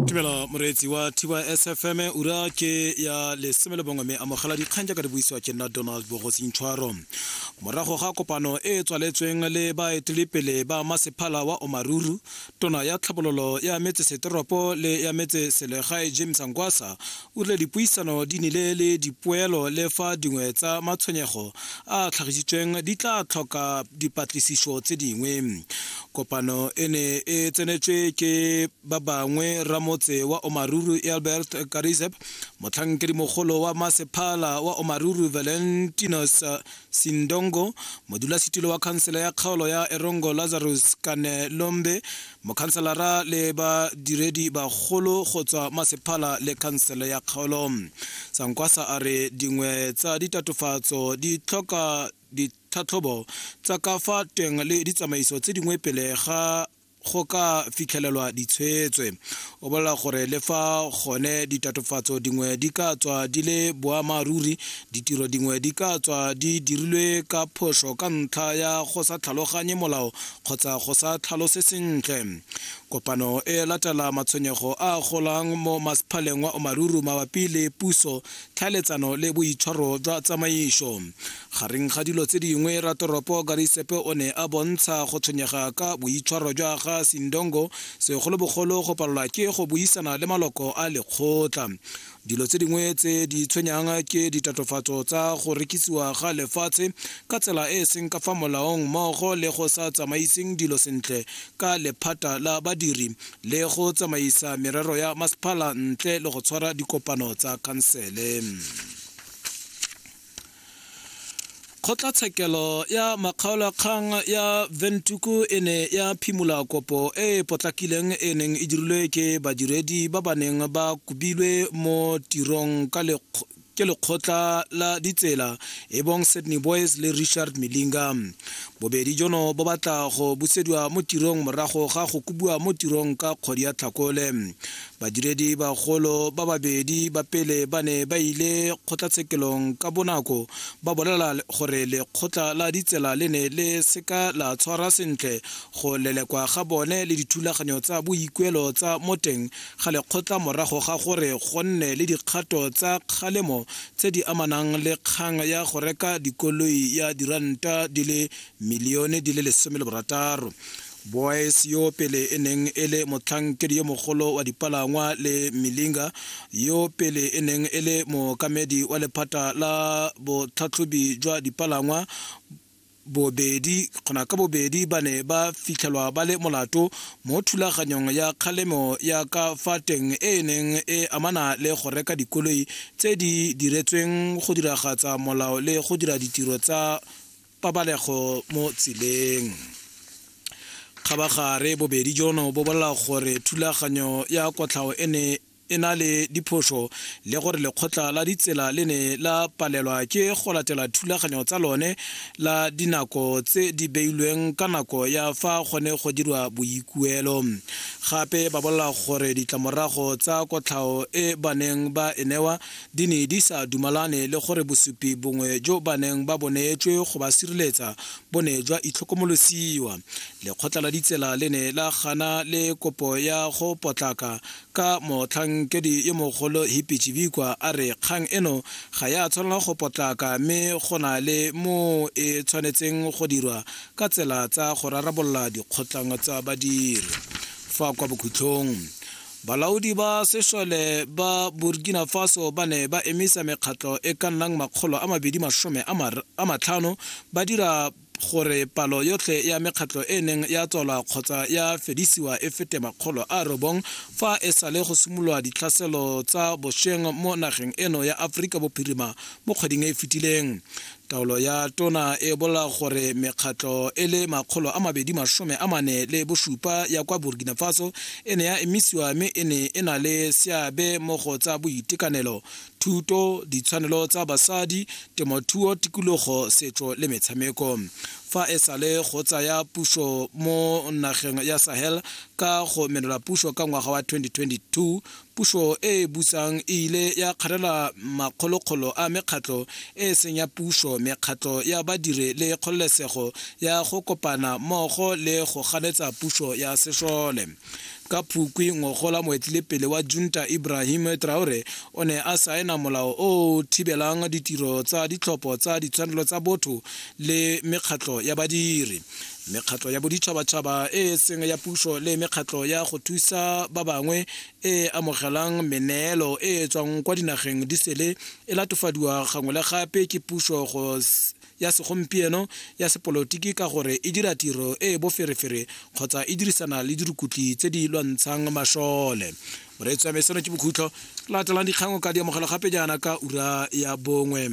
tumelo moreetsi wa tys fm ura ke ya lesome le bongwe mme amogela dikgang jaaka di buisiwa ke nna donald bogosintshwaro morago ga kopano e e tswaletsweng le baeteledipele ba masephala wa omaruru tona ya tlhabololo ya metsesetoropo le ya metseselegae james angwasa O rile dipuisano di nile le dipoelo le fa dingwe tsa matshwenyego a a tlhagisitsweng di tla tlhoka dipatlisiso tse dingwe. Kopano e ne e tsenetswe ke ba bangwe ramotse wa Omaruru Albert Karizeb, motlhankedimogolo wa masephala wa Omaruru Valentinus Sindongo, modulasetilo wa khansele ya kgaolo ya Erongo Lazarus Kanelombe, mokhanselara le badiredi bagolo go tswa masephala le khansele ya kgaolo sankwasa a re dingwe tsa ditatofatso di tlhoka ditlhatlhobo tsa ka fa teng le ditsamaiso tse dingwe pele ga go ka fitlhelelwa ditshwetswe O bolela gore le fa gone ditatofatso dingwe di ka tswa di le boammaaruri, ditiro dingwe di ka tswa di dirilwe ka phoso ka ntlha ya go sa tlhaloganye molao kgotsa go sa tlhalose sentle. Kopano e latela matshwenyego a golang mo masephaleng wa Omaruru mabapi le puso, tlhaeletsano le boitshwaro jwa tsamaiso. Gareng ga dilo tse dingwe, ratoropo Garisepe o ne a bontsha go tshwenyega ka boitshwaro jwa ga Sindongo, segolobogolo go palelwa ke go buisana le maloko a lekgotla. Dilo tse dingwe tse di tshwenyang ke ditatofatso tsa go rekisiwa ga lefatshe ka tsela e e seng ka fa molaong mmogo le go sa tsamaiseng dilo sentle ka lephata la badiri le go tsamaisa merero ya masepala ntle le go tshwara dikopano tsa khansele. kgotlatshekelo ya makgaolakgang ya ventuku e ne ya phimola kopo e e potlakileng e neng e dirilwe ke badiredi ba ba neng ba kobilwe mo tirong ka lekgo- ke lekgotla la ditsela e bong sydney boys le richard melinga bobedi jono bo batla go busediwa mo tirong morago ga go kobiwa mo tirong ka kgwedi ya tlhakole Badiredi bagolo ba babedi ba pele ba ne ba ile kgotlatshekelong ka bonako ba bolela gore lekgotla la ditsela le ne le seka la tshwara sentle go lelekwa ga bone le dithulaganyo tsa boikuelo tsa mo teng ga lekgotla morago ga gore go nne le dikgato tsa kgalemo tse di amanang le kgang ya go reka dikoloi ya diranta di le milione di le lesome le borataro. Boys yo pele e neng e le motlhankedi yo mogolo wa dipalangwa le Milinga yo pele e neng e le mookamedi wa lephata la botlhatlhobi jwa dipalangwa bobedi kgona ka bobedi ba ne ba fitlhelwa ba le molato mo thulaganyong ya kgalemo ya ka fa teng e e neng e amana le go reka dikoloi tse di diretsweng go diragatsa molao le go dira ditiro tsa pabalego mo tseleng kgabagare bobedi jono bo bolela gore thulaganyo ya kotlhao e ne e na le diphoso le gore lekgotla la ditsela le ne la palelwa ke go latela thulaganyo tsa lone la dinako tse di beilweng ka nako ya fa gone go dirwa boikuelo gape ba bolela gore ditlamorago tsa kotlhao e baneng ba e newa di ne di sa dumalane le gore bosupi bongwe jo ba neng ba bo neetswe go ba sireletsa bo ne jwa itlhokomolosiwa lekgotla la ditsela le ne la gana le kopo ya go potlaka ka motlhankedi yo mogolo hipi chibikwa a re kgang eno ga ya tshwanela go potlaka mme go na le moo e tshwanetseng go dirwa ka tsela tsa go rarabolola dikgotlhang tsa badiri fa kwa bokhutlhong Balaodi ba sešole ba Burkina Faso ba ne ba emisa mekgatlo e ka nnang makgolo a mabedi masome a matlhano ba dira gore palo yotlhe ya mekgatlho e neng ya tswalwa kgotsa ya fedisiwa e fete makgolo a robong fa e sale go simolola ditlhaselo tsa bosheng mo nageng eno ya Aforika Bophirima mo kgweding e e fetileng. Taolo ya tona e bolela gore mekgatlho e le makgolo a mabedi masome a mane le bosupa ya kwa Burkina Faso e ne ya emisiwa mme e ne e na le seabe mo go tsa boitekanelo, thuto, ditshwanelo tsa basadi, temothuo, tikologo, setso le metshameko. Fa e sale go tsaya puso mo nageng ya Sahel ka go menola puso ka ngwaga wa 2022, Puso e e busang e ile ya kgarela makgolokgolo a mekgatlho e e seng ya puso, mekgatlho ya badiri le kgololesego ya go kopana mmogo le go ganetsa puso ya sešole. Ka Phukwi ngogola moetelepele wa junta Ibrahim Traore o ne a saena molao o o thibelang ditiro tsa ditlhopho tsa ditshwanelo tsa botho le mekgatlho ya badiri. mekgatlho ya boditšhabatšhaba e e seng ya puso le mekgatlho ya go thusa ba bangwe e e amogelang meneelo e e tswang kwa dinageng di sele e latofadiwa gangwe le gape ke puso go ya segompieno ya sepolotiki ka gore e dira tiro e e boferefere kgotsa e dirisana le dirukutli tse di lwantshang mashole moreetsi wa me seno ke bokhutlho latelang dikgango ka di amogela gape jaana ka ura ya bongwe